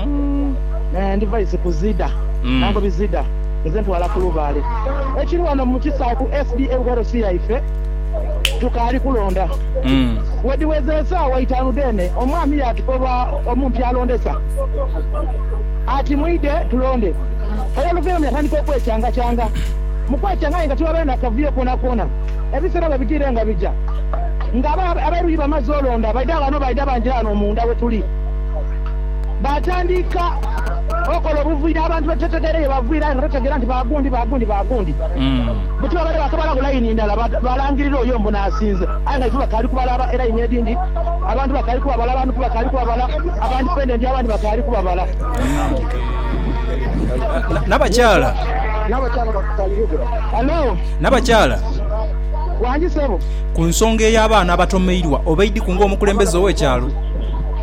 Umm eeh ndiva izi ku Zida nankobi Zida nze ntwala ku lubaale ekiri wano mu kisaawe ku SDA Wherosi yaife tukaali kulonda. Wedhiweza esaawa itaanu dheene omwami yaatukoba omumpi alondesa ati mwidhe tulonde era oluvainhuma yatandika okwecangacaanga. Mu kwecaanga aye nga tiwabaire na kavuyo koonakoona. Ebiseera bwe bigiire nga bigya nga ab'eruyi bamaze olonda baidha ghano baidha bangi ghano munda we tuli. Baatandika okola obuvuyo abantu bwetutategeera ye baviira aye nga tutegeera nti ba gundi, ba gundi, ba gundi. Buti babaire baakabalaku layini ndala balangirira oyo mbu n'asinze aye nga ife bakaali kubalaba e layini edhindi abantu bakaali kubabala, abantu bakaali kubabala aba ndipendenti abandi bakaali kubabala. Nabakyala. Ku nsonga ey'abaana abatomeirwa obaidhiku ng'omukulembeze ow'ekyalo?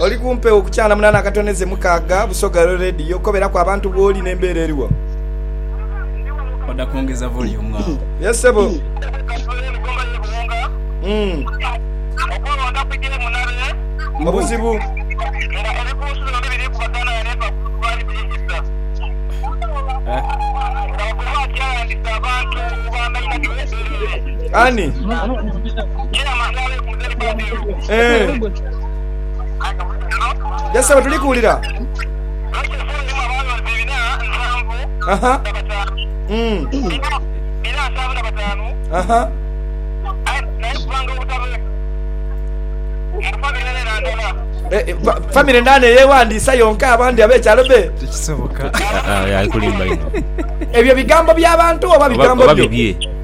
Oli ku mpewo ku kyana munana akatoneze mukaaga Busoga Lwe Radio koberaku abantu bwoli ne mbeera eriwo. Oda kwongeza volume awo. Yes sebo. Obuzibu. Ani? Eeh. Yes sebo tuli kuwulira. Aha. Mm. Aha. Eh, eh, fa- family ndane yewandiisa yonka abandi abekyalo be tekisoboka Ah, ah, ali kulimba ino ebyo bigambo by'abantu oba oba bigambo oba byo bibye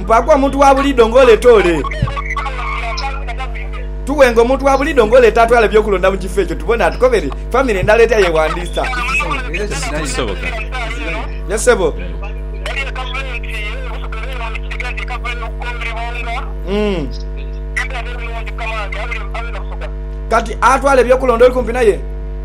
Mpaaku omuntu wa buliidho ng'oleeta ole. Tughenga omuntu wa buliidho ng'oleeta atwale eby'okulonda mu kifo ekyo tubone atukobere famire endala etya yeewandiisa. Ye ssebo. Kati atwala eby'okulonda oli kumpi naye?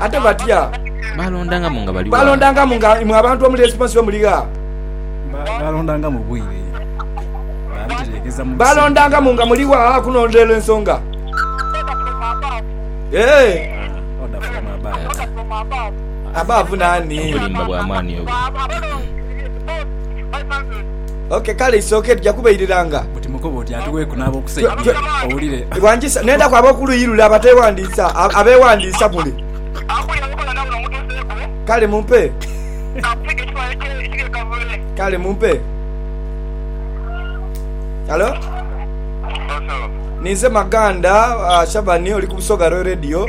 Ate batya? Baalondangamu nga bali gha? Baalondangamu nga imwe abantu omuli Esipansi bwe muli gha? Baalondangamu bwire? Baabitereegeza mu biseera bya? Baalondangamu nga muli gha kunondera ensonga? Ee. Order from above. Above naani? Obulimba bwa maani obwo. Ok, kale isooke tuja kubairiranga. Buti mukoba oti atuweeku n'ab'okusaidia owulire. Wangisa n'endaku ab'oku luuyi lule abateewandiisa, abeewandiisa mule. Kale mumpe. Kale mumpe. Halo? Ninze Maganda, Shabani oli ku Busoga Royal Radio.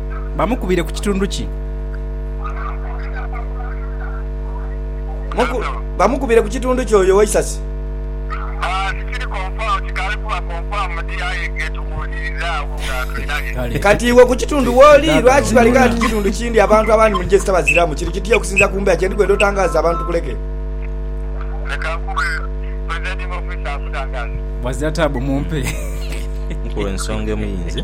bamukubire ku kitundu ki? Muku, bamukubire ku kitundu ki oyo Waisasi? Ah, tikiri konfamu, tikaali kuba konfamudi, aye ke tuwuliriza agho nga tulina bye Kale. Kati iwe ku kitundu wooli, lwaki bali gha nti kitundu kindi abantu abandi muli gye sitabaziramu? Kiri kitya okusinziira ku mbeera kye ndi kwenda otangaaze abantu kuleke? Leka nkube presiding officer akutangaze. Bwazira taabu mumpe. Nkuwe ensonga emu yinze.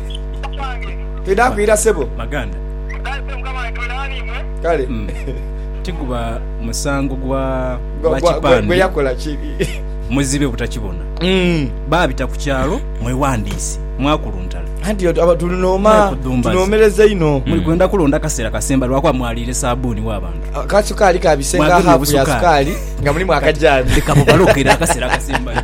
Twidha kwira sebo. Baganda. Kale. Tiguba musango gwa gwa kipande. Gwe yakola ki? Muzibe butakibona. Mm. Babita ku kyalo mwewandiise mwakuluntala. Anti tulinooma tunomereza ino. Muli kwenda kulonda kaseera kasemba lwakuba mwaliire sabuuni wa bantu. Ah, ka sukaali ka bisenga hafu ya sukaali nga mulimu akajani. Leka bubalokera akaseera kasemba.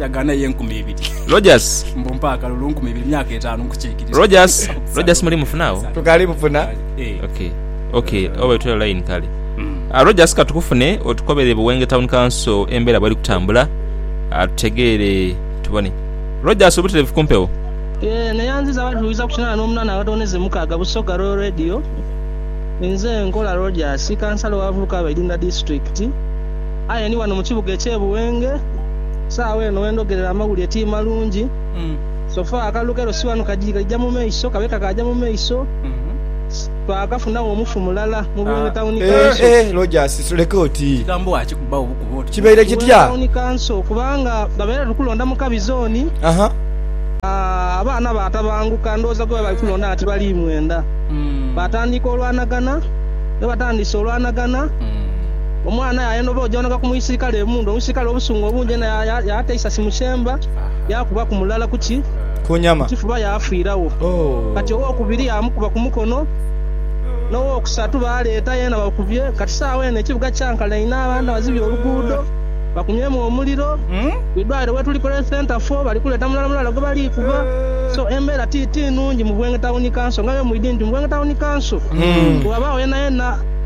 Yagaana ye enkumi ibiri. Rogers. Mbu mpa akalulu nkumi ibiri myaka etaanu nkukiikiriza. Rogers. Rogers muli mufuna agho? Tukaali mufuna. Ok. Ok. Oba itwele line kale. Rogers katukufune otukobere Buwenge Town Council embeera bweri kutambula tutegeere tubone. Rogers obutereevu ku mpewo? Yee, neyanziza abatuwuliriza ku kinaana n'omunaana abatondeze mukaaga Busoga Royal Radio. Nze nkola Rogers, Kansala owa Vulukaba Idunda Disitulikiti. Aye ndi ghano mu kibuga eky'e Buwenge, saagho eno we ndhogerera amawulire ti malungi. So far, akalulu k'erosi ghano kagyi kaija mu maiso, kabe kakaagya mu maiso, twakafunagho omufu mulala mu Buwenge Tawuni Kanso kubanga babaire tukulonda mu kabi zooni, abaana baatabanguka, ndhowooza gwe bali kulonda nga tibali mwenda, baatandiika olwanagana. Ghe batandiise olwanagana. Omwana yaayanoba ojaonoka ku muisirikale emundu, omuisirikale obusungu obungi inho yaata eisasi mu kyemba, yaakubaku mulala ku ki? Ku nyama. Kifuba yaafiiragho. Kati owokubiri yaamukuba ku mukono, n'owokusatu baaleeta yeena bakubye. Kati saagho eno ekibuga kyankana inho, abantu bazibye oluguudo, bakumyemu omuliro. Ku idwaliro wetuli ku Health Centre fo, bali kuleeta mulala mulala gwe bali kuba. So, embeera ti, ti nnungi mu Bwenge Tawuni Kanso. Ng'abe mwidhi nti, mu Bwenge Tawuni Kanso, bwe wabaagho yenayena.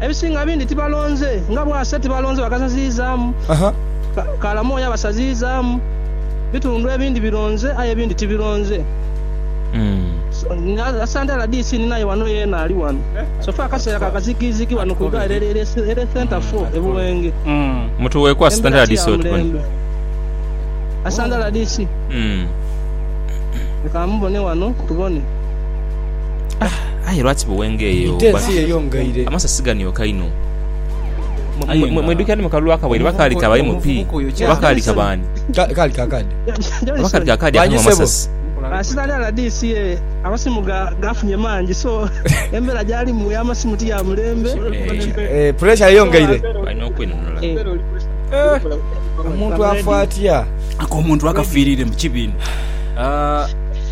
Ebisinga bindi tibalonze nga bwase tibalonze bakasaziizaamu kaala mwoyo abasaziizaamu. Bitundu ebindi bironze aye ebindi tibironze. Asantera DC ni naye wano yeena ali wano. So far akaseera ka kazigizigi wano ku idwaliro erye Centre four e Buwenge. Embera ti ya mulembe. Asantera DC leka mubone wano tubone. Aye lwaki bwe wengeye oba amasasi ganioka inho? Mwidhukira ni mu kalulu akawaire oba kaali ka ba MP oba kaali ka baani? Kaali ka kaadi akanhwa amasasi. Sitani rdc ye amasimu gafunye mangi so embera gyalimu eya masimu ti ya mulembe. Pressure eyongeire. Balina okwenunula. Omuntu afa atya? Ako omuntu akafiirire mu kibinha.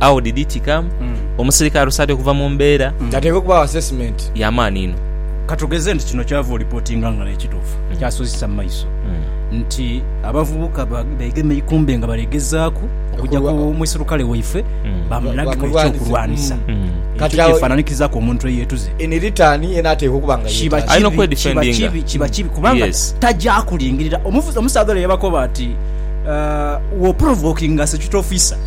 How did it come? Omuserikale alusaadha okuva mu mbeera. Kyateekwa okubaawo assessment. Ya maani inho. Ka tugeze nti kino ky'ova olipotinga nga naye kituufu, kyasuzisa mu maiso nti abavubuka beegema eikumbe nga bali gezaaku okugya ku muserukale waife bamulage eky'okulwanisa ekyo kyefaananikizaku omuntu eyeetuze. In return yena ateekwa okuba nga yeetanze. Alina okwedifendinga. Kiba kibi kubanga taja kulingirira. Omusaadha ole yabakoba ati, Wo provokinga security officer.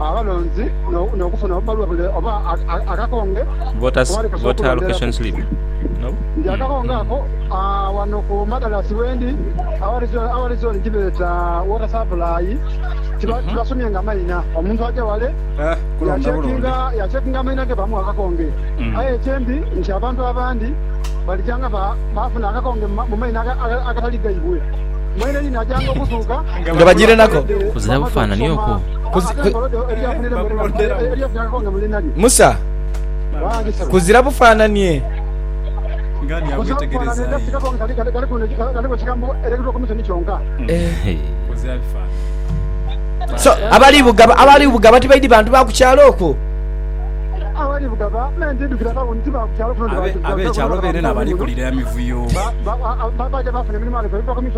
abalonzi n'okufuna obubaluwa bule oba akakonge akubalekeesa okulonderaku. Ndi akakonge ako wano ku Madalasi wendi, awali zoni gyebeeta Water Supply, tibasomye nga maina. Omuntu aja wale yacekinga amaina ge bamuwa akakonge. Aye ekyendi nti abantu abandi balija nga baafuna akakonge mu maina agatali gaibwe. Mweene yenayanga okuzuuka nga bagirenaku. Kuzira bufaananie okwo. Kuzi, ku, Musa, kuzira bufaananie. Eh. So, abali bugaba, abali bugaba tibaidi bantu ba ku kyalo okwo. Abe, abekyalo beene n'abalikulira emivuyo.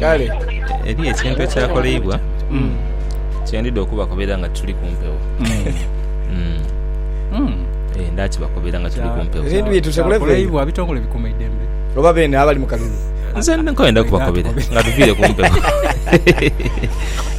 Kale. Eriyo ekintu ekyakoleibwa kye ndidha okubakobera nga tuli ku mpewo. Ee, ndakibakobera nga tuli ku mpewo. Ebintu byetu tebuleve. Kyakoleibwa abitongole bikuuma eidembe. Oba beene abali mu kalulu. Nze nkwenda kubakobera nga tuviire ku mpewo.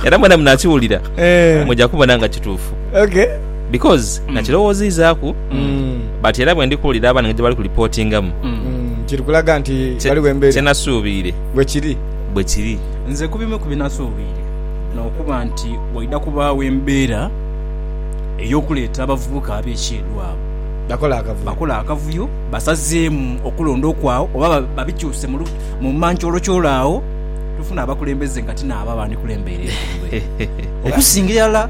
Era mwena munakiwulira, Eh. muja kubona nga kituufu. Okay. because Mm. nakirowoziizaaku Mm. but era bwe ndi kuwulira abaana nga gye bali ku lipootingamu Mm. Mm. Kiri kulaga nti kye- ghaligho kye embeera nasuubiire bwe kiri. bwe kiri Nze ku bimu ku binasuubiire n'okuba nti waidha kubaawo embeera ey'okuleeta abavubuka ab'ekyeedo abo Bakola akavuyo. bakola akavuyo basazeemu okulonda okwagho oba ba- babikyuse mu lu- mu mankyolokyolo agho tufuna abakulembeze nga ti naabo abandikulembera ebitundu ebyo. okusinga irala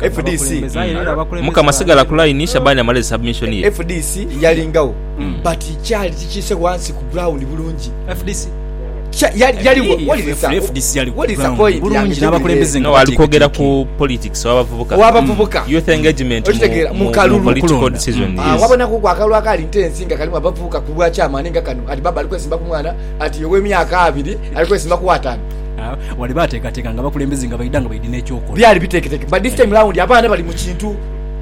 FDC mukama sigala ku line shabani amale zi submission ye. FDC yalingagho but kyali kikiise ghansi ku ground bulungi. FDC yaligho wuliriza wuliriza point yange jiwulire. No ali kwogera ku politics owa bavubuka. Owa bavubuka. Youth engagement okitegeera mu kalulu. Mu political decision yes. Ah wabonaku ku akalulu akali ntensi nga kalimu abavubuka ku bwa chairman nga kano ati baba ali kwesimba ku mwana ati owe myaka abiri ali kwesimba ku wataanu. Ah, wali baateekateeka nga abakulembeze nga baidha nga baidhi n'ekyokola. Byali biteeketeke but this time round abaana bali mu kintu.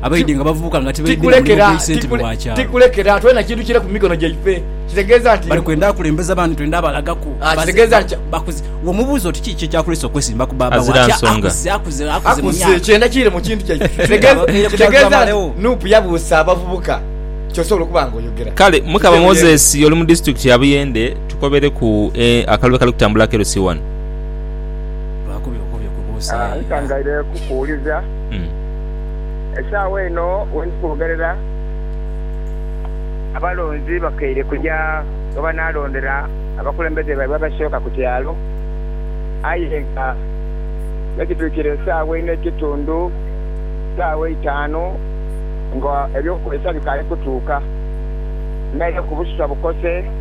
Abaidhi nga bavubuka nga tibaidhi na mulimu Tikulekera, gw'eisente tikule- bwa kyalo. tikulekera. Twena kintu kire ku mikono gyaife. Kitegeeza nti. Bali kwenda akulembeze abandi twende abalagaku. Ah, Baze- kitegeeza ba- nti- bakuze. Womubuuza oti kiki ekyakulese okwesimba ku baaba wo? Azira Ati nsonga. akuze, akuze, akuze mu Akuze, myaka. kyenda kire mu kintu kyaife. Kitegeeza- Ababeire ku Kitegeeza nti kyalo bamalewo. nup yabuusa abavubuka kyosobola okuba nga oyogera. Kale mukama Kitegeeza- moses oli mu disitulikiti ya buyende Tukobereku akalulu akali kutambula akerusi ghano. Nkangaire kukuwuliza. Esaawa eno we ndi kwogerera, abalonzi bakeire kuja ghe banaalondera abakulembeze baibwe abasooka ku kyalo. Aye nga me kituukire esaawa ine ekitundu, saawa eitaanu nga eby'okukozesa bikaali kutuuka. Naireku busutwa bukose.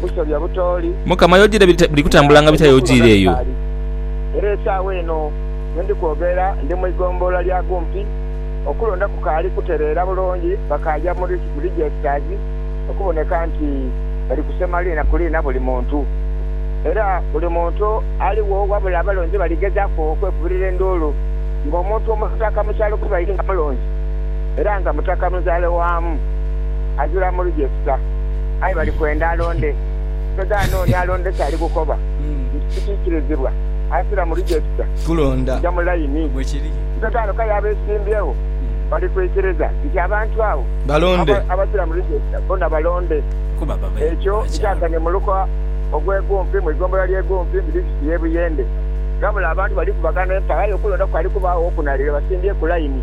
busobya butooli. Mukama, y'ojiire biri kutambula nga bitya y'ojiire eyo? Era esaawa eno ye ndi kwogera ndi mu igombolola lya Gumpi, okulonda kukaali kutereera bulungi, bakaaja mu registers okuboneka nti bali kusema liina ku liina buli muntu. Era buli muntu aligho wabula abalonzi baligezaaku okwekubirira enduulu nga omuntu omutaka mu kyalo gwebaire nga mulonzi era nga mutaka munzaale waamu azira mu register. aye bali kwenda alonde. Togaana oni alonde kyali kukoba nti kikiikirizibwa. Aisira mu rijesita, kuja mu laini. Togaana kale abeesimbyewo bali kwikiriza nti abantu abo abasira mu rijesita bona balonde. Ekyo nkyasanie mu luko ogw'e Gumpi mu igombolola ly'e Gumpi mu disitirikiti y'e Buyende. Ghabula abantu balikubagana empaka aye okulonda kukali kubaagho wokunalire basimbye ku laini.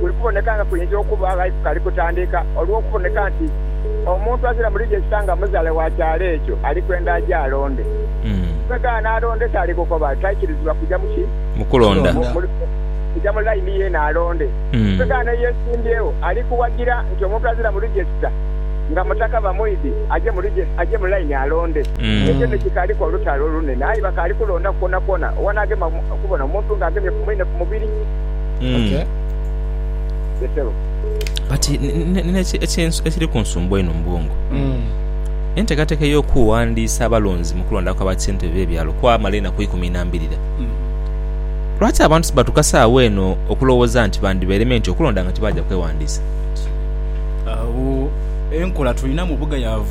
kuli kuboneka nga kuinza okuba ghali kukali kutandika olw'okuboneka nti omuntu azira mu lijesita nga muzale wa kyalo ekyo ali kwenda aje alonde. Bwegaba n'alonda ekyali kukoba taikirizibwa kuja mu ki? Mu kulonda. Kuja mu laini yeene alonde. Bwegaba n'eyesimbyewo ali kuwagira nti omuntu azira mu lijesita nga mutaka va mwidhi aje mu aje mu laini alonde. Ekyo ni kikaaliku olutalo olunene aye bakaali kulonda kwonakwona owa n'agema okubona omuntu nga agemye ku mwine ku mubiri. Okay. Betero. but n- n- nina eki- ekinsu- ekiri ku nsumbu eno mu bwongo Mm. enteekateeka ey'okuwandiisa abalonzi mu kulonda kwa bassentebe b'ebyalo kwamala enaku ikumi na mbirira Mm. lwaki abantu sibatuka saawa eno okulowooza nti bandibereme nti okulonda nga tibaaja kwewandiisa Agho enkola tulina mu bugayaavu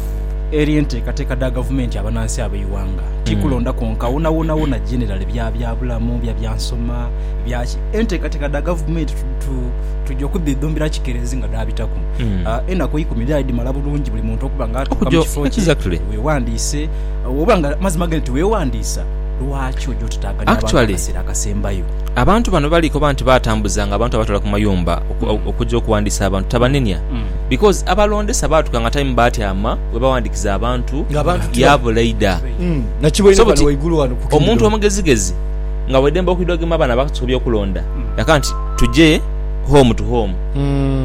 eri enteekateeka dha gavumenti abanansi ab'eighanga tikulonda kwonka wonawonawona generally bya byabulamu bya byansoma bya ki enteekateeka dha gavumenti tu- tu- tugya okudhidhumbira kikeerezi nga dhaabitaku Mm. Ah, enaku eikumi dhaali dhimala bulungi buli muntu okuba nga atuuka mu Okugya- kifo kye exactly. weewandiise oba nga mazima gani nti weewandiisa lwaki oja otutaaganya abantu Actually- akaseera akasembayo Abantu bano bali koba nti batambuzanga abantu abatwala ku mayumba oku- Mm. okugya okuwandiisa abantu tabanenia Mm. because abalondesa baatuka nga time baatyama we bawandiikiza abantu Ng'abantu tiba- yaabula ida Mm. nakiboine So wano buti waigulu wano ku omuntu Kingdom. omugezigezi nga waidembe okwidha ogema abaana batu ku by'okulonda, yagamba nti, Tuje home to home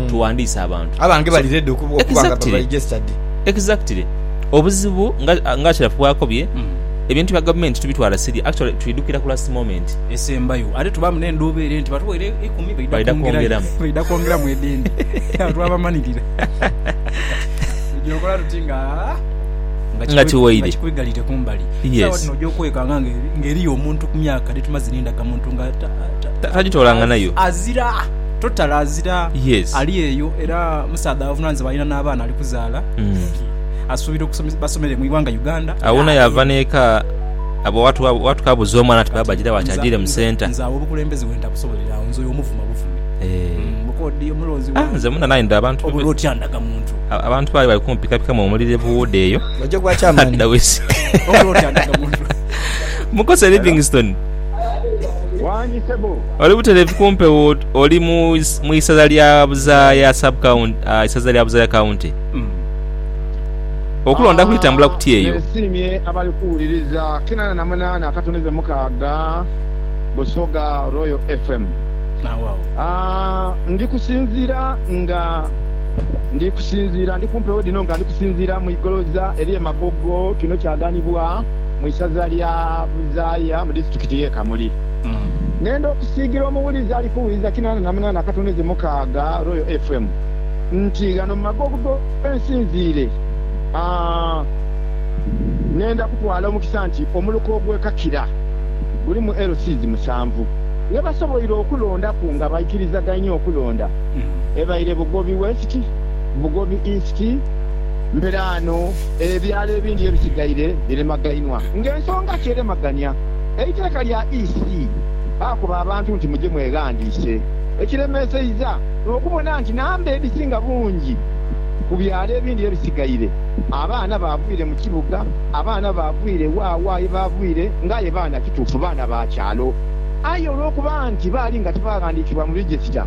tughandiise abantu. Abange bali ready okuba nga ba registered. Exactly. Obuzibu nga nga Sharafu bw'akobye, ebintu bya gavumenti tubitwala siriya, actually twidhukira ku last moment. Esembayo ate tubaamu n'endhuubo ere nti batuweire eikumi baidha kwongerayo, baidha kwongeramu edhindi. Agho twabamanhirira. Tuja okola tuti nga kikwigalidde kumbali. Sawa dhino oja okwekanga nga eriyo omuntu ku myaka dhetumaze nindaga muntu nga azira totally azira ali eyo era musaadha avunanizibwa alina nabaana ali kuzaala asuubira basomere mu iwanga Uganda awona yava neka abo watukabuza omwana nti baaba ajirawa ki ajire mu centre nze awo obukulembeze wentabusobolera awo nze oyo omuvuma buvumi lwokuba odiye omulonzi wange oba otya ndaga muntu Abantu baali bali kumupikapikamu omuliro ebuwuuda eyo. Mukose Livingstone, oli butereevu ku mpewo oli mu isaza lya Buzaaya sub county, ah, isaza lya Buzaaya county. Hmm. Okulonda kulitambula kutya eyo? Nesiimye abali kuwuliriza kinana na munana akatonize mukaaga Busoga Royal FM. Ah, ndi kusinziira nga. Ndi kusinziira, ndi ku mpewo dhino nga ndi kusinziira mu igoloza ery'e Magogo. Kino kyaganibwa mu isaza lya Buzaaya mu disiturikiti y'e Kamuli. Nenda okusiigira omuwulizi ali ku wiiza kinaana na munaana akatoneze mukaaga, Royal FM, nti ghano mu Magogo ghe nsinziire, nenda kutwala omukisa nti omuluka ogwekakira gulimu LCs musanvu ghe basoboire okulondaku nga baikirizaganye okulonda. ebaire Bugobi West, Bugobi East, mberaano ebyalo ebindi ebisigaire biremagainwa nga ensonga ki eremagania eiteeka lya EC baakoba abantu nti muje mweghandiise ekiremeseiza n'okubona nti namba edhisinga bungi ku byalo ebindi ebisigaire abaana baavwire mu kibuga abaana baavwire wawa yebaavwire nga aye baana kituufu baana ba kyalo aye olwokuba nti baali nga tibaghandiikibwa mu register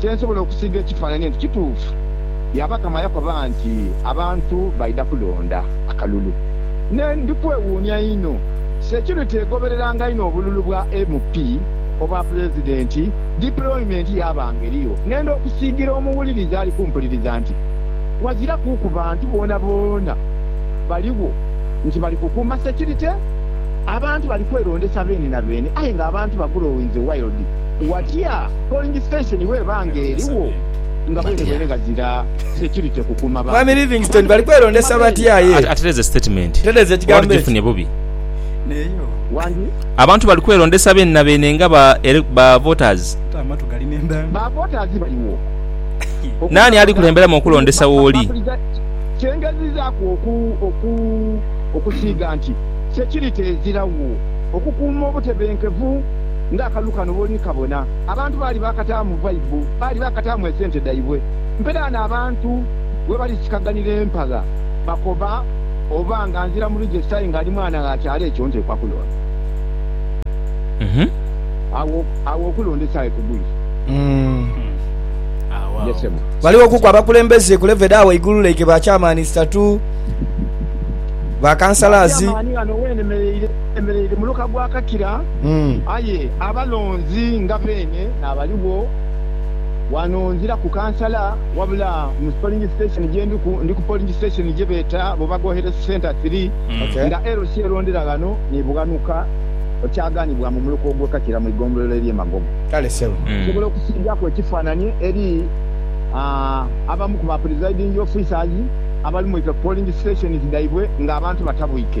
kye nsobola okusiiga ekifaananie nti kituufu. Yaba kama yakoba nti abantu baidha kulonda akalulu. Ne ndi kwewuunia inho, security egobereranga inho obululu bwa MP, obwa Pulezidenti, deployment yabanga eriyo. Ngenda okusiigira omuwuliriza ali kumpuliriza nti wazira kuuku bantu boonaboona baligho nti bali kukuuma security. Abantu bali kwerondesa beene na beene aye nga abantu ba growing the wild. Watya? Polling station bweba nga eriwo nga bwere bwere ghazira security kukuuma bantu. Mwami Livingstone bali kwelondesa batya ye? Atereze statement oba tujifunye bubi? Abantu bali kwelondesa beenabeene nga ba voters? Ba voters baliwo. Naani ali kulemberamu okulondesa wooli? Kye ngezizaaku okusiiga nti security ezirawo okukuuma obutebenkevu. ng'akalulu kano bw'oli kabona. Abantu baali baakataamu vaibu, baali baakataamu esente dhaibwe. Mperaano abantu webali sikaghanira empagha, bakoba oba nga nzira mu rijesita aye nga ndi mwana gha kyalo ekyo nteekwa kulonda. Agho agho okulonda esaaghe ku guli. Ye ssebo. Balighokuku abakulembeze ku levo edha ghaigulu like ba Chairman isatu, ba Ba Councillors. Chairman ghano wenemereire, nemereire muluka gwa Kakira. Aye abalonzi nga beene naabaligho. Wano nzira ku kansala wabula mu polling station gye ndiku, ndi ku polling station gye beeta bo Bagohere Centre Three, nga LC erondera ghano ni bughanuka okyaghanibwa mu muluka ogw'e Kakira mu igombolola ery'e Magogo. Kale ssebo. Nsobola okusiigaaku ekifaananie eri abamu ku ba presiding officers abali mu ife polling stations dhaibwe nga abantu batabwike?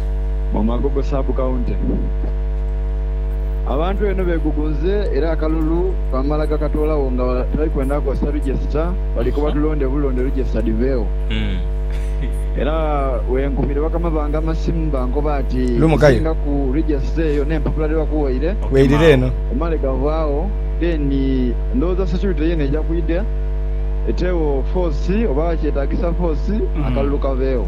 mu Magogo Sub County. Abantu eno begugunze era akalulu kamala gakatoolagho nga tibali kwenda kozesa register bali koba tulonde bulonde register dhiveegho era wenkubire bakama bange amasimu bankoba ati ekisingaku register eyo n'empapula dhebakuwaire omale gavaagho then ndowooza security yeena eja kwidha eteegho force oba kyetagisa force akalulu kaveegho.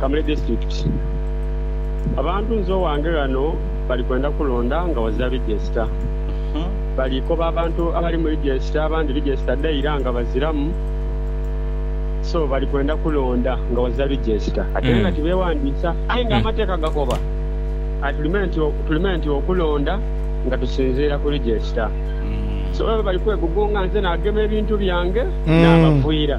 Kamuli District. Abantu nze owange ghano bali kwenda kulonda nga waza Legiesita. Bali koba abantu abali mu Legiesita abandi Legiesita dhaira nga baziramu so bali kwenda kulonda nga waza Legiesita ate nga tibewandisa aye nga amateeka gakoba tulime nti okulonda nga tusinziira ku Legiesita. So bali kwegugunga nze nagema ebintu byange nabaviira.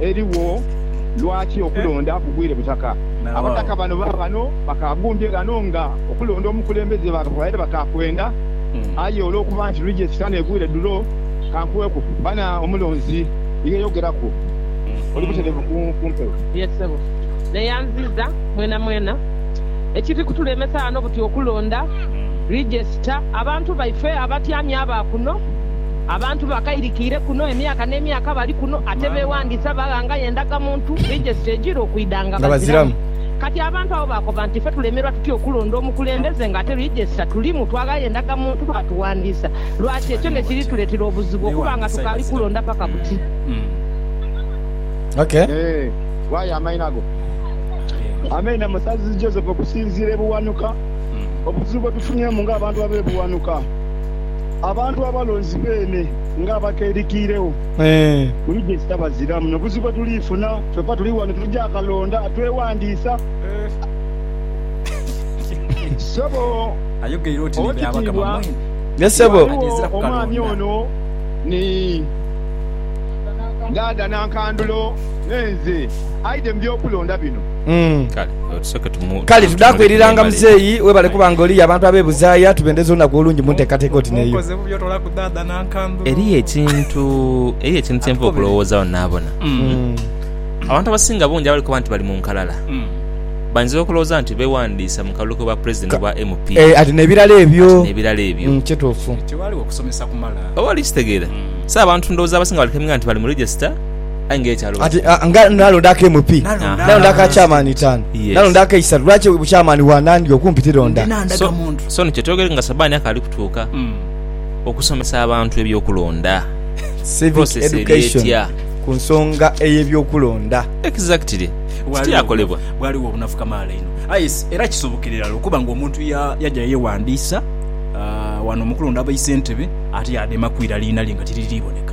erigho lwaki okulonda kugwire butaka. Abataka bano baabano bakaagumbye ghano nga okulonda omukulembeze babaire bakaakwenda aye olwokuba nti lwija esitani egwire ddulo. Kankugheku bana omulonzi yeyogeraku oli buterevu ku mpewo. Ye ssebo, neyanziiza mwenamwena. Ekiri kutulemesa ghano buti okulonda, Rigyesita, abantu baife abatyamye aba kuno. Abantu bakairikiire kuno emyaka n'emyaka bali kuno ate beewandiisa baghangayo endagamuntu, registry, egira okwidha nga baziramu. Kati abantu abo baakoba nti, Ife tulemerwa tutya okulonda omukulembeze nga ate regista tulimu, twaaghayo endagamuntu baatuwandiisa? Lwaki ekyo ne kiri tuleetera obuzibu okuba nga tukaali kulonda paka buti? Abantu abalonzi beene nga abakeerikiiregho buli gye kitabaziramu na buzibu bwe tuliifuna. Kyoka tuli ghano tuja kalonda atwewandiisa. Ssebo Owekitiibwa, ghaligho omwami ono ni Dhaadha Nankandulo ne nze aidhe mu by'okulonda bino. Kale tudaaku eriranga muzeeyi webale kuba nga oliyo abantu abebuzaaya tubendeza olunaku olungi munteekateeka oti neyo. Eriyo ekintu eriyo ekintu kyenva okulowoozagho naabona. Mm. Abantu abasinga bungi abali kuba nti bali mu nkalala mm. bainza okulowooza nti bewandiisa mu kalulu k'obwa pulezidenti obwa MP eh, ati n'ebirala ebyo n'ebirala ebyo mm, kituufu oba oli kitegeera mm. so abantu ndowooza abasinga bali keminga nti bali mu regisita Aye nga ekyalo Ati bakitwala. ah, nga nalonda ak'emu pi Nalonda nalonda aka akansi. kyamaani itaanu Yes. nalonda ak'eisatu lwaki obukyamaani bwa nandi okumpi Ndi tilonda nandaga So, muntu. so nikyo twogere nga Sabani akaali kutuuka Mm. okusomesa abantu eby'okulonda. civic process eri education etya? ku nsonga ey'ebyokulonda Exactly. Bwaliwo- Tikyakolebwa. bwaliwo obunafu kamaala ino aye s- era kisobokera irala okuba nga omuntu ya- yaja yewandiisa ah, wano mukulonda baisentebe ate yademaku irala inalye nga tiririboneka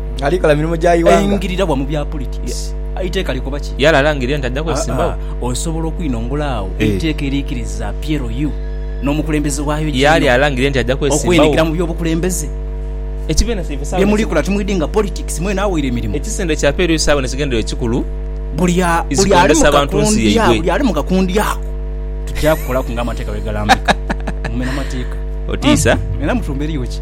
Aingirira wa mu bya politics? Eiteeka likoba ki? Aa, osobola okwinongola agho eiteeka eriikiriza PLU n'omukulembeze waayo Gino okweingira mu by'obukulembeze? Bye muli kola timwidinga politics mwena awaire mirimo? Buli ali mu kakundi ako tugya kukolaku nga amateeka bwe galambika. Mumena mateeka. Mwena mutuumba eriyo ki?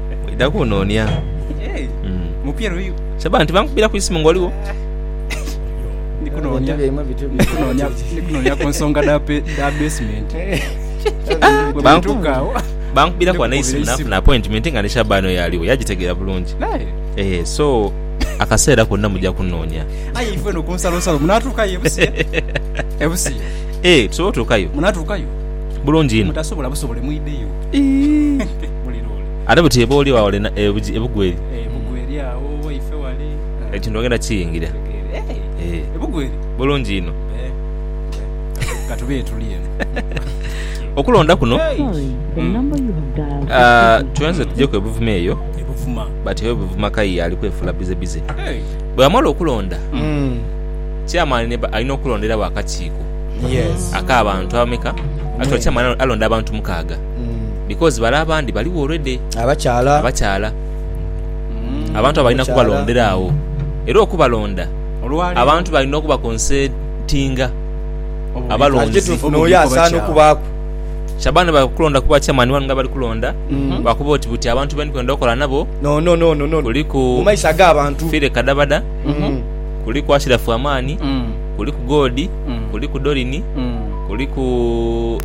Oidha kunoonia. Saba nti bankubira ku isimu ng'oligho. Ndikunoonia ku nsonga dha basement. Bankubira ku isimu nafuna appointment nga ni Shaban oyo aliwo yagitegeera bulungi. Eh, so akaseera konna mujja kunoonia. Aye ife eno ku nsalonsalo munaatuukayo ebusiya? Ebusiya? Eh, tusobola otuukayo. Munaatuukayo? Bulungi inho. Mutasobola busobole mwidheyo. Ate buti oba oli agho lena ebugwa eri. Ekintu ogenda kiyingira. Bulungi inho. Okulonda kuno twenze tujeku ebuvuma eyo but oyo buvuma kayiye ali kwefula bize bize. Bwamala okulonda chairman alina okulondera wo akakiiko aka bantu abameka? Actually chairman alonda abantu mukaaga. because bale abandi baligho already abakyaala abantu abo balina kubalondera agho era okubalonda abantu balina okuba consentinga abalonzi Shaban bali kukulonda kuba chairman wanu nga abali kulonda lwakuba oti buti abantu beni kwenda okola nabo kuliku Fire Kadabada kuliku Ashiraf Amani kuliku Godi kuliku Dorini kuliku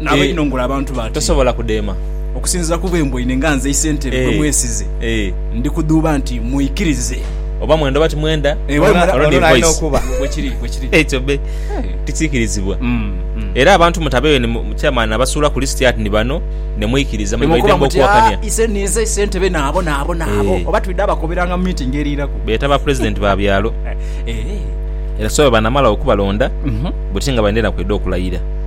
Naaba inho ngula abantu bati. Tosobola kudheema. Okusinziira ku bwe mbweine nga nze isentebe gwe mwesize, ndi kudhuuba nti mwikirize. Oba mwenda oba timwenda, olwo ni voice. Bwe kiri, bwe kiri. Ekyo be tikiikirizibwa. Era abantu mutabeeyo ni chairman nabasuula ku list ati ni bano, ne mwikiriza. Muli baidembe okuwakania. Aa, ise ninze isentebe naabo, naabo, naabo. Oba twidha bakoberanga mu meeting eriiraku. Beeta ba president ba byalo. Era so bwe banamala okubalonda, buti nga baidha na kwidha okulayira.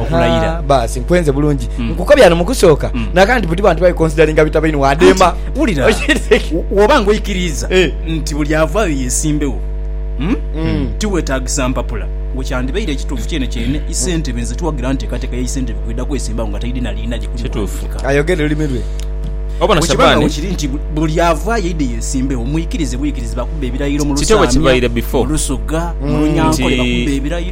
okulayira. Baasi nkwenze bulungi mm. nkukobya no mukusooka mm. naka nti buti bantu babikonsidalinga bitabaini wademba wulira woba nga oikiriiza eh. nti buli avaayo yesimbewo mm? mm. tiwetagisa mpapula we kyandibaire ekituufu kyene kyene mm. isentebe nze tuwagira nteekateeka ya isentebe kweda kwesimbawo nga taidina liina gye kulikutuufuka ayogere olulimi lwe obonasabani kiri nti buli avaayo ide yesimbewo mwikirize bwikirize bakubba ebirayiro mu lusaamya mu lusoga mu lunyankole bakubba ebirayiro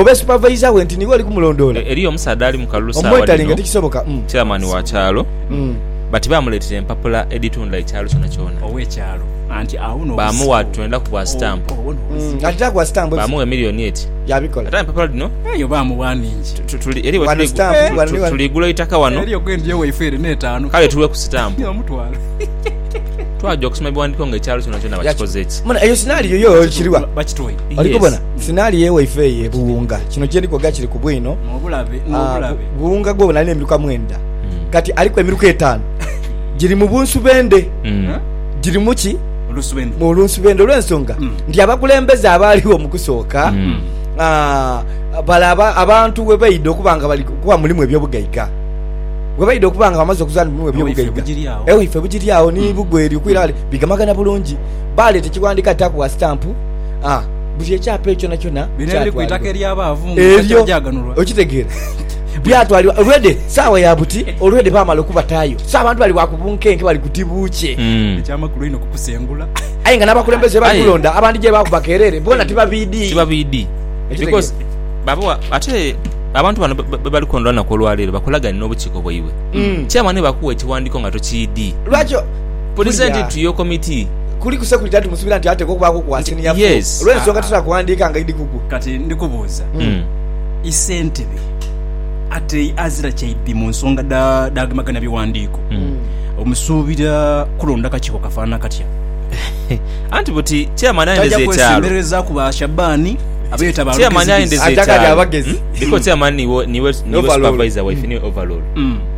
oba supavayiza we nti niwe oli kumulondoola. Eriyo omusaadha ali mu kalulu saawa dhino, chairman wa kyalo, bati baamuleetera empapula edhitunda ekyalo kyonakyona. Baamuwa twenda ku bwa sitampu. Baamugha emiliyoni eti. Ate aye empapula dhino tuli gula eitaka wano kale tuwe ku sitampu. Twaja okusoma ebiwandiiko ng'ekyalo kyonakyona bakikoze ki? Sinali ye waife eyo e Buwunga. Kino kye ndi kwoga kiri ku bwino. Buwunga gwebona alina emiruka mwenda, kati aliku emiruka etaanu giri mu bunsubendhe. Giri mu ki? Mu lunsubendhe. Olw'ensonga nti abakulembeze abaaligho mu kusooka, bale abantu we baidha okuba nga bali kuba mulimu eby'obugaiga, we baidha okuba nga bamaze okuzaala mu mulimu eby'obugaiga, e waife bugiri agho ni bugweri okwira ghale, bigamagana bulungi. Baaleeta ekiwandiiko ati Takuwa Sitampu. Buli ekyapa ekyo kyonakyona Bino ebiri ku itaka ery'abaavu mu ngeri eryo. etabagyaganulwa. Okitegeera? Byatwalibwa olwedhe saawa ya buti, olwedhe baamala okubataayo. So abantu bali bwa ku bunkenke, bali kuti buukye. Eky'amakulu einho kukusengula. Aye nga n'abakulembeze be bali Aye. kulonda abandi gye baaku bakeerere, bona ti babiidi. Ti babiidi. Okitegeera? Because baba wa- ate abantu bano be- be bali kulonda olunaku olwaleero bakolagane n'obukiiko bwaibwe. Chairman bwe bakuwa ekiwandiiko nga tokiidii, Lwaki Pulezidenti w'Okomiti. Kuli ku security anti musubira nti atekwa okubaaku ku wa senior four. Yes. Olw'ensonga tosobola kuwandiika nga idi kugwo. Kati ndi kubuuza, isentebe ate azira kyaidhi mu nsonga dha dhagemagana biwandiiko, omusuubira kulonda kakiiko kafaanana katya? Anti buti Chairman ayendeza Taja ekyalo. kwesembereza ku ba Shabani abeeta ba Chairman lugezigezi. ayendeza Aja nga ali ekyalo. abagezi. Because Chairman niwe niwe Niwe overall. supervisor waife, niwe overall. Mm.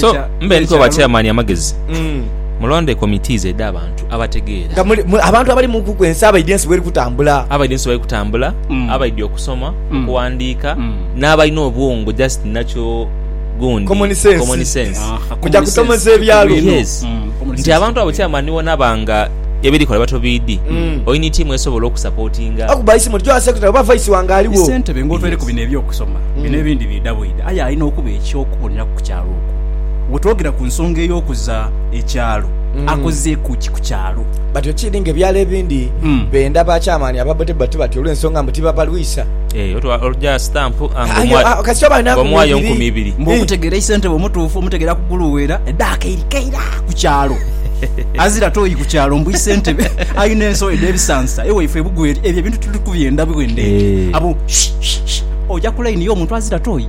So mbe ndikuwa ba chairman amagezi mm. mulonde committees edha abantu abategeera nga muli, muli, abantu abali mu kuku ensi abaidhi ensi bweri kutambula abaidhi ensi bweri kutambula mm. abaidhi okusoma mm. okuwandiika mm. n'abalina obwongo just nakyo gundi common sense, common sense. Ah, kuja kutomeza ebyalo yes. mm. nti abantu abo chairman wonaba nga ebirikola batobiidi mm. olina itiimu esobola okusapotinga akuba isimu tujwa secretary oba vice wange aliwo isentebe ngotwere ku bino ebyokusoma mm. bino ebindi bidabwida aye alina okuba ekyok okuboneraku ku kyalo okwo. Bwe twogera ku nsonga ey'okuza ekyalo, akozeeku ki ku kyalo? Batyo kiri ng'ebyalo ebindi benda bakyamaani ababbotebba ti batyo olw'ensonga mbu tibabalwisa. Eeh, oja sitampu ng'omuwayo nkumi ibiri. Mbu okutegeera ye ssentebe omutuufu omutegeera ku guluweera eddaaka eiri keira ku kyalo. Azira tooyi ku kyalo mbu ye ssentebe alina enso edh'ebisansa ewaifo e Bugweri. Ebyo ebintu tuli kubyenda bwenda eno? Abo, shh, shh, shh, oja ku layini y'omuntu azira tooyi?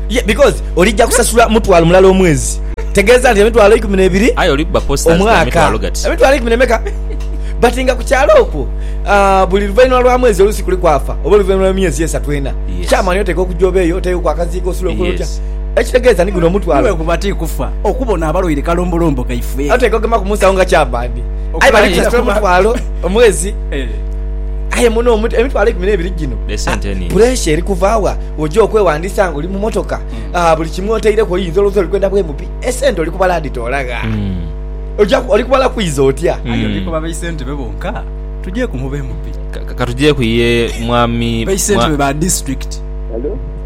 Ye, because olija kusasula mutwalo mulala omwezi. Tegeeza nti emitwalo eikumi n'ebiri Aye oli kuba posters dha omwaka. mitwalo gati. Emitwalo eikumi n'emeka? But nga ku kyalo okwo, ah, buli luvainhuma lwa mwezi oluusi kuliku afa, oba oluvainhuma lwa myezi esatu ena. Yes. Chairman oteekwa okuja obeeyo, oteekeku akaziika, osule okole otya. Yes. Ekitegeeza ni guno omutwalo. Iwe kuba ti kufa, okubona abalwaire kalombolombo kaife. Oteekwa okugemaku mu nsawo nga chairman. Aye Okuba bali aye- kusasula mutwalo omwezi. Eh. Aye muno omu- emitwalo eikumi n'ebiri gino, Esente ah, nhingi. pressure eri kuva wa? Oja okwewandiisa nga oli mu motoka, ah, buli kimu otaireku oyinza olowooza oli kwenda bwemupi. Esente oli kubala aditola gha? Oja, oli kubala kwiza otya? Aye oli kuba baisente be bonka? Tujeeku mu bemupi. Ka, ka, katujeeku ye Mwami, Baisente mwa, be ba district.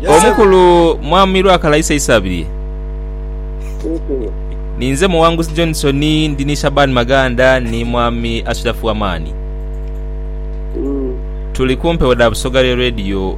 Omukulu Mwami Lwakalaisa Isabirye. Ninze Muwanguzi Johnson, ndi ni Shaban Maganda ni Mwami Ashirafu Amani. Tuli ku mpewo dha Busoga Radio.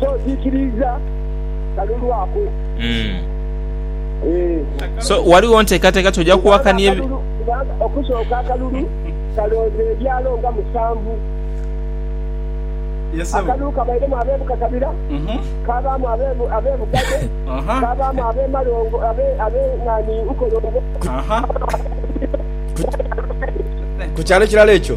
so kikiriza kalulu ako eh. so waliwo ntekateka toja kuwakania okusooka akalulu kalooza ebyalo nga musanvu akalulu kabairemu abebukakabira mhm. kabaamu abebugade kabaamu abemalongo abenani nkolongo ku kyalo ekirala ekyo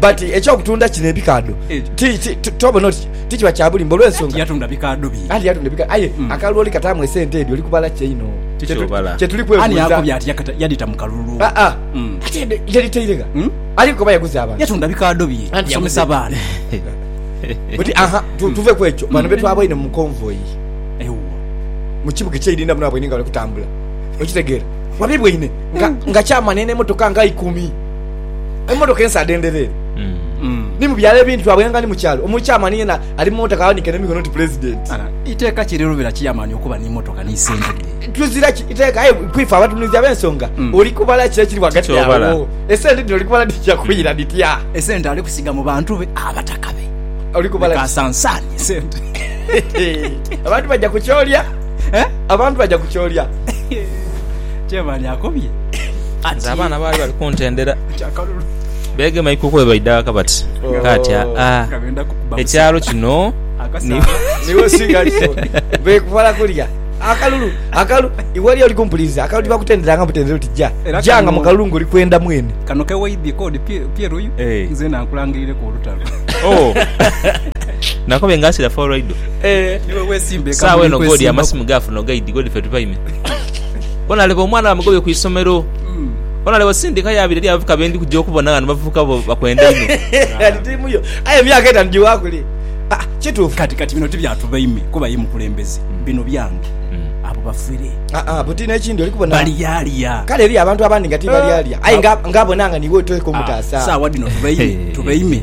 But ekyokutunda kino ebikaadho tobona oti tikiba kyabulimba olwensonga anti yatunda bikaadho bye anti yatunda bikaadho aye hmm. akaloli kataamu esente edyo olikubala kyeino kyetuli kwebuuza ani akobya ati yadita mu kalulu ah, ah. Hmm. ate yaditairega hmm? ali kuba yaguza abantu yatunda bikaadho bye asomesa abaana buti aha tuve kwekyo bano betwaboine mu convoy mu kibuga ekyeirinda muno abweine nga bali kutambula okitegeera wabibweine nga kyamane nemotoka nga ikumi Emotoka ensa adendherere hmm. ni mu byalo ebindi twaboyanga ni mu kyalo omukyamani yena ali mu motoka awanike n'emikono nti pulezidenti. Iteeka ki erirubira kiyamani okuba n'emotoka n'esente dhe? Tuzira ki iteeka aye kwife abatunuzi ab'ensonga hmm. oli kubala ki ekiri ghagati awo esente dhino oli kubala dhija kwira hmm. dhitya? Esente ali kusiga mu bantu be abataka be oli kubala kasansaani esente abantu baja ku kyolya Abantu baja kukyolya kyebali akobye kati. Nze abaana baali bali kuntendera beegema ikuku bwe baidha ghaka bati, Kaati aa ekyalo kino niiwe osinga kyo beekubala kulya akalulu. Akalulu iwe oli oli kumpuliza akalulu bakutenderanga butendera oti ja ja nga mu kalulu ng'oli kwenda mwene. Kano ke waidhie k'odi pye luyu nzena nkulangirireku olutalo. Nakobye nga asira fo olwaido. Saawa eno Godi amasimu gaafuna ogaidi Godi ffe tupaime Bona leba omwana bamugobye ku isomero Bona leba osindika yaabira eri abavubuka be ndi kuja okubona ghano Bavubuka bo bakwenda inho Aye emyaka etaanu giwa kule Kituufu Kati kati bino ti bya tubaime kuba ye mukulembeze Bino byange Abo bafere Buti n'ekindi oli kubona balyalya Kale eriyo abantu abandi nga ti balyalya Aye nga abona nga niiwe oteeka omutaasa Saawa dhino tubaime tubaime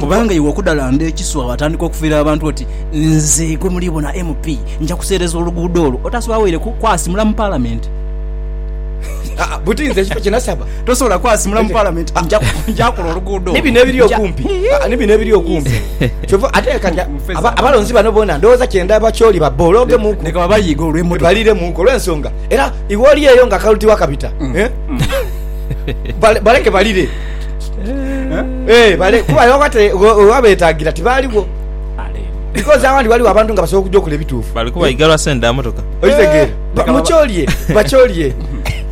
Kubanga iwe okudhalanda ekiswa waatandika okufiira abantu oti nze gwe muli bona MP nja kuseereza oluguudo olwo otaase waweire ku kwasimula mu Palamenti. Tosobola kwasimula mu Palamenti nja kola oluguudo olwo. Eh, bale kuba era oba te- we- oba betagira tibaligho because awandi waliwo abantu nga basobola okuja okola ebituufu bali kuba iga lwa sente dha motoka okitegeera Ba- Leka mukyolye bakyolye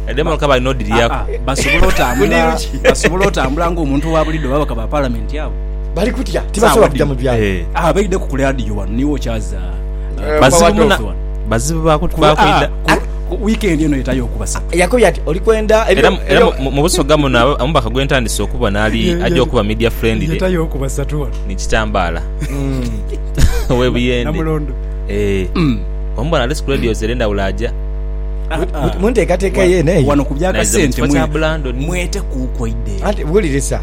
ede motoka balina odiryaku Ah, basobola otambula Muniru ki? basobola otambula ng'omuntu wa bulido baba bakaba palamenti abo bali kutya tibasobola kuja mu byalo Eh, Ah, baideko ku ladiyo wano niwe okyaza Eh, bazibu Power muna- Talk. bazibu baku- Ku- bakwida ah, ku- Ku wiikendi eno yetayo okubasa. Yakobye ati, Oli kwenda ebyo. Era, era mu, mu busoga muno abo omubaka gwe ntandise okubona ali aja okuba media friendly. Yetayo okubasa tu wano. Ni kitambaala. Owe Buyende. Namulondo. Eeh. Omubona ali ku radios ere ndawula aja. Mu nteekateeka ye, n'eyo. Wano ku bya kasente, mwe, mwetekuuku eidheeyo. Anti, wulirisa.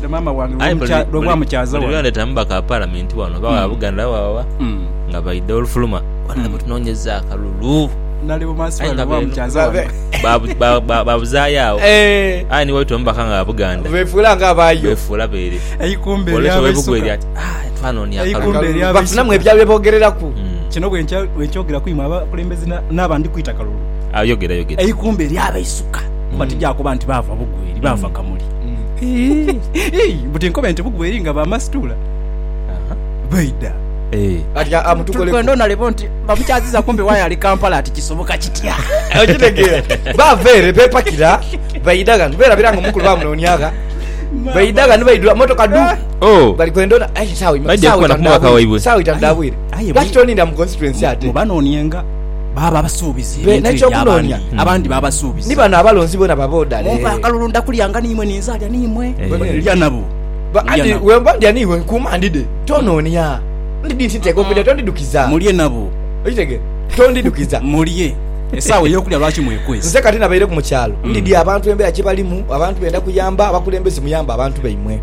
Aye buli lwe ndetamu bakapalamenti wano oba wa Buganda oba wawa nga baidha olufuluma bona batunonyeza akalulu aye nga benu babuzayo agho aye ni waitwa omubaka nga wa Buganda befuula beere bwoleta owe Bugweri ati twanonia akalulu bafunamu ebyabogereraku kino bwenkyogera kwiimwe abakulembeze naabo andikwita kalulu eikumbe eri abeisuka kuba tijakuba nti baava Bugweri baava Kamuli. Ii, mbu tinkobe nti bugwe eri nga ba masituula baidha. Ee. Kati a- amutukoleku. Tuli kwenda onalebo nti bamukyaziza kumbe wire ali Kampala ati kisoboka kitya? okitegeera bava ere bepakira baidha ghano berabira nga omukulu bamunonia gha baidha ghano baidhula motoka du Oh. bali kwenda ona aye sawa ima- Baidha sawa kukona itanu kumwaka dhabwire, waibwe. sawa itanu dhabwire Aye lwaki mwi- toninda mu constituency ate Mubanonyenga. Baaba abasuubizi be, ebintu ebyo n'eky'okunoonia abandi, abandi baaba abasuubizi. Ni bano abalonzi bona baba odale. Mumpe akalulu ndakulyanga n'imwe ni nzaalya n'imwe. Bwe ndya nabo, Ba, ndya anti nabo. bwe mba ndya n'imwe nkuuma ndidhe, tonoonia. Ndi dhi ntidha okulya, tondidhukiza. Mulye nabo. Okitegera? Tondidhukiza. Mulye. Esaawa ey'okulya lwaki mwekwese? Nze kati nabaireku mu kyalo, ndidhi abantu embeera kye balimu, abantu benda kuyamba, abakulembeze muyambe abantu baimwe.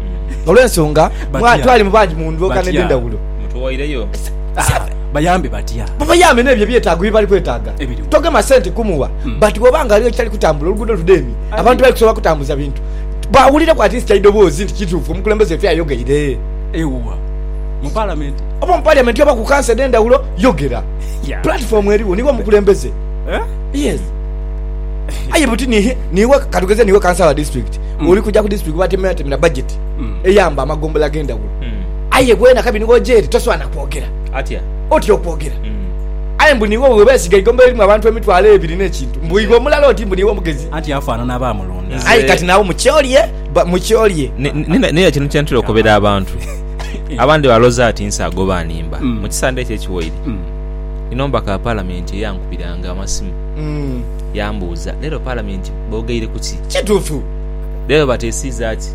Olw'ensonga, mwa, Batya. twalimu bangi mu ndhoka Batya. n'edh'endhawulo. Mutuwaireyo. Sa, sa, bayambe batya? Babayambe n'ebyo ebyetaago bye bali kwetaaga. Togema sente kumugha but bw'oba nga ghaligho ekitali kutambula, oluguudo ludheemye, abantu bali kusobola kutambuza bintu, bawulireku at least eidoboozi nti kituufu omukulembeze waife ayogeire. Eugha mu Palamenti. Oba mu Parliament oba ku kanso edh'endhawulo, yogera. Platform eriwo, niiwe omukulembeze. Yes. Aye buti ni, niiwe, katugeze niiwe kansa wa district, oli kuja ku district baatemeatemera budget eyamba amagombola ag'endhawulo, aye bwena kabi niwe oja ere, toswaana kwogera. Atya? Otya okwogera. Aye mbu niiwe bwe beesiga eigombe eririmu abantu emitwalo ebiri n'ekintu, mbu iwe omulala oti mbu niiwe omugezi. Anti afaanana abaamulunda. Aye kati naawe mukyolye, mukyolye. Naye kino kye ntera okobera abantu. Abandi baloza ati nse agoba animba. Mu kisande ekyo ekiwaire, nina omubaka wa Palamenti eyankubiranga amasimu yaambuuza, Leero Palamenti boogeire ku ki? Kituufu. Leero bateesiiza ki?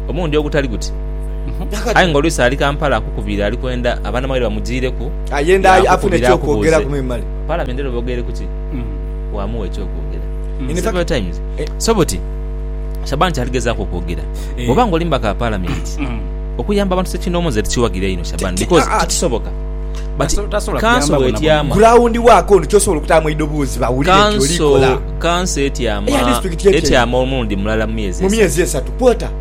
Omulundi ogutali guti. Aye nga oluusi ali Kampala akukubiire ali kwenda abanamawulire bamujiireku yaakukubira akubuuze. Palamenti era obogeere ku ki? Waamuwa eky'okwogera. Several times. So buti Shaban kyali gezaaku okwogera, bw'oba nga oli mubaka wa Palamenti, okuyamba abantu ssekinnoomu nze ndikiwagira inho Shaban because tikisoboka but kanso bw'etyama, kanso, kanso etyama, etyama omulundi mulala mu myezi esatu.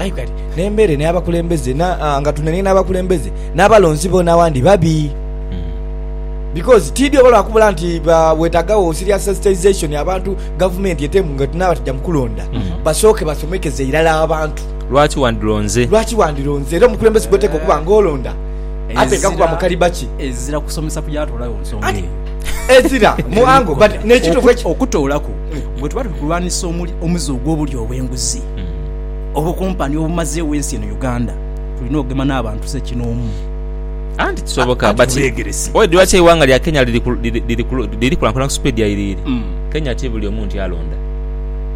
Aye kale, n'embeere n'abakulembeze, nga tunenye n'abakulembeze, n'abalonzi boona awandi babi. Because tiidhi oba lwa kubula nti weetaagagho serious sensitization abantu, gavumenti etemu nga etunaaba tija mu kulonda, basooke basomekeze irala abantu. Lwaki wandilonze? Lwaki wandilonze? Era omukulembeze gw'oteekwa okuba nga olonda ateekwa kuba mu kaliba ki? Ezira kusomesa ku gyatoolayo nsonga eyo. Ezira mu angle but n'ekituufu. Okutoolaku, bwe tuba tuli kulwanisa omuze ogw'obulyo obw'enguzi, obukumpani obumazeewo ensi eno Uganda tulina okugema n'abantu sekinoomu anti kisoboka but why lwaki eiwanga lya Kenya liri liri liri kulankula ku speed ya iriiri mm. Kenya ti buli omu nti alonda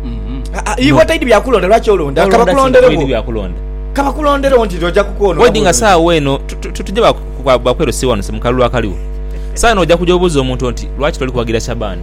mm-hmm. ah, ah, iwe taidi byakulonda lwaki olonda kabakulonderewo byakulonda kabakulonderewo nti oja kukwona wedi nga saawa eno tutuje bakwerosiwa nose mukalulu akaliwo saano oja kuja obuuza omuntu nti lwaki toli kuwagira shabani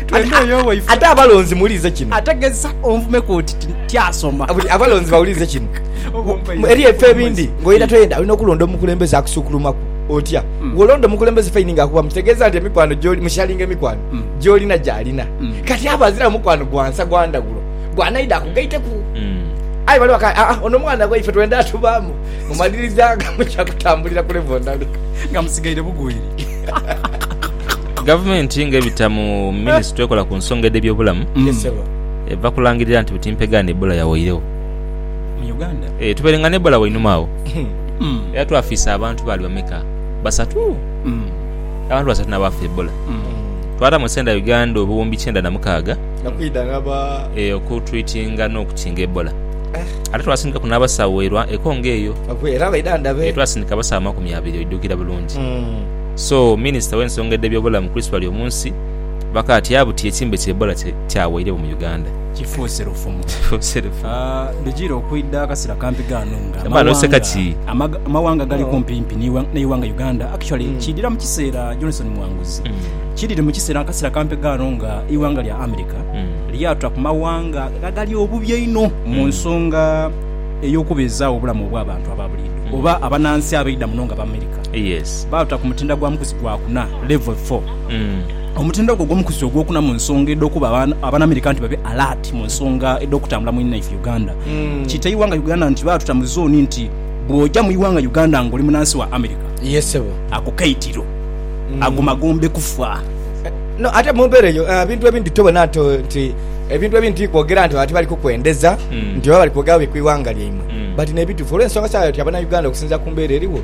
Twembi oyo owaife. Ate abalonzi muwulirize kino. Ategeza onvumeku oti tyasoma. Abalonzi bawulirize kino. Eri ebifo ebindi ng'oyenda toyenda olina okulonda omukulembeze akusuukulumaku. Otya? Bw'olonda omukulembeze faini ng'akubamu kitegeeza nti emikwano gy'oli musharinga emikwano gy'olina gy'alina. Kati aba aziramu mukwano gwa nsa gwa ndhaghulo gw'anaidha akugaiteku. Aye bali bakaaya, aa ono mwana waife twenda atubaamu. Mu maliriza nga muja kutambulira ku levo ndala. Nga musigaire bugweri. Gavumenti ng'ebita mu minisitule ekola ku nsonga edh'ebyobulamu eva kulangirira nti buti mpegaano Ebola yawairegho. Eeh tubaire nga n'Ebola wainuma agho era twafiisa abantu baali bameka? Basatu? Abantu basatu n'abaafa Ebola. Twataamu esente dha Uganda obuwumbi kyenda na mukaaga eeh okutwitinga n'okukinga Ebola. Ate twasindikaku n'abasawo e Congo eyo. Eeh twasindika abasawo amakumi abiri oidhukira bulungi. Gavumenti so Minisita w'ensonga edh'ebyobulamu Chris Baryomunsi bakaatya buti ekimbe ki Ebola kyaweiregho mu Uganda. Kifuuse lufumo. Kifuuse lufumo. Ah, lujiire okwidha akasira kampi ghano nga Shamba n'oseka ki? amawanga amawanga gali kumpimpi n'iwa- n'eighanga Uganda actually kiidhira mu kiseera Johnson Mwanguzi kiidhire mu kiseera akasira kampi ghano nga eighanga lya America lyatula ku mawanga agali obubi einho mu nsonga ey'okubeezaagho obulamu obw'abantu aba buliidho. oba abanansi abaidha muno nga Bamerika baatuta ku mutindo gwa mukuzi gwa kuna, Level Four. Omutindo ogwo ogw'omukuzi ogw'okuna mu nsonga edh'okuba Abanamerika nti babe alert mu nsonga edh'okutambula mu inaife Uganda. Kiita eighanga Uganda nti baatuta mu zooni nti bw'oja mu ighanga Uganda ng'oli munansi wa Amerika, ako kaitiro, ago magombe kufa. No, ate mu mbeera eyo ebintu ebindhi tobona nti ebintu ebindhi ti kwogera nti ati bali kukwendeza nti oba bali kwogera bubi ku ighanga lyaimwe. but nebitufu olwensonga sawa yoti abana Uganda okusinzira kumbera eriwo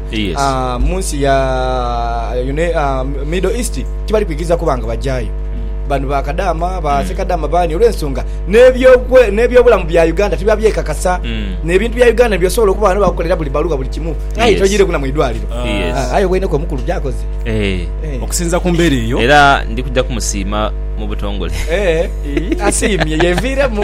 munsi ya middle east tibali kwikiriza kuba nga bajayo bano ba kadama ba mm. sekadama bani olwensonga nebyobulamu bya Uganda tibiba byekakasa mm. nebintu bya Uganda byosobola okuba bano bakukolera buli baluwa buli kimu aye toyire kuna mwidwaliro ah, aye wene ko mukulu byakoze eh. Eh. okusinza kumbera eyo era ndikuja kumusiima mu butongole eh, asiimye yeviiremu